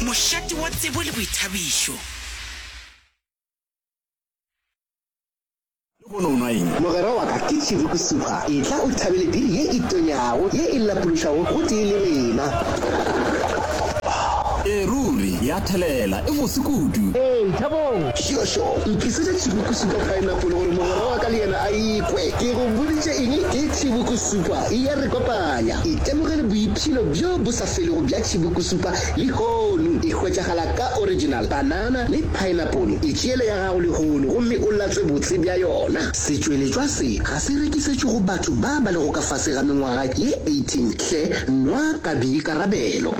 Mošate wa tsebo le boithabišo. Lehono o nwa eng? Mogwera wa ka, ke Tšhivi Kusupa. Etla o thabele biri ye e tonyago, ye e lapološago gotee le rena. Ee, ruri, ya thelela. E bose kudu. Ee, thabong. Šošo, ntlisetša Tšhivi Kusupa paenapole gore mogwera wa ka le yena a e kwe. Ke go boditše eng? Ke Tšhivi Kusupa. E ya re kopanya. Itemogele boiphelo bjo bo. Selego bja tšhibukusupa lehono e hwetšagala ka original banana le paenapole. Itšeele ya gago lehono gomme o latswe botse bja yona. Setšweletšwa se ga se rekisetšwe go batho ba ba lego ka fase ga mengwaga ye 18 hle nwa ka boikarabelo.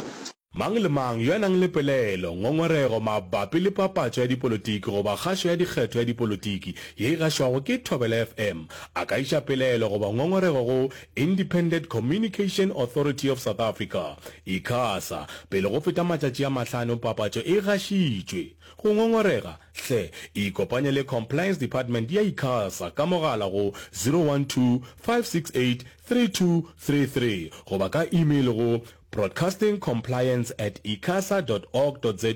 Mang le mang yo a nang le pelaelo, ngongorego mabapi le papatšo ya dipolotiki goba kgašo ya dikgetho ya dipolotiki ye e gašwago ke Thobela FM a ka iša pelaelo goba ngongorego go Independent Communication Authority of South Africa, Icasa, pele go feta matšatši a mahlano papatšo e gašitšwe. Go ngongorega? Hle, ikopanye le Compliance Department ya Icasa ka mogala go 012 568 3233 goba ka email go Broadcasting Compliance at icasa dot org dot za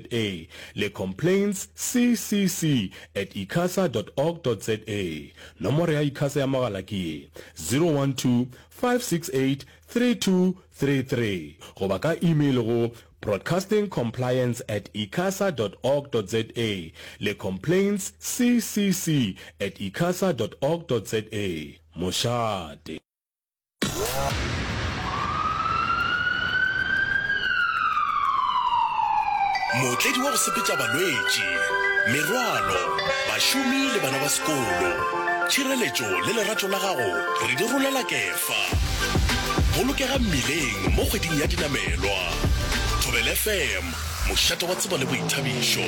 le Complaints CCC at icasa dot org dot za. Nomoro ya Icasa ya mogala ke ye, 012-568-3233 goba ka email go Broadcasting Compliance at icasa dot org dot za le Complaints CCC at icasa dot org dot za. Mošate. mootledi wa go sepetša balwetši merwalo bašomi le bana ba sekolo tšhireletšo le lerato la gago re di rolela kefa bolokega mmileng mo kgweding ya dinamelwa thobel fm mošate wa tsebo le boithabišo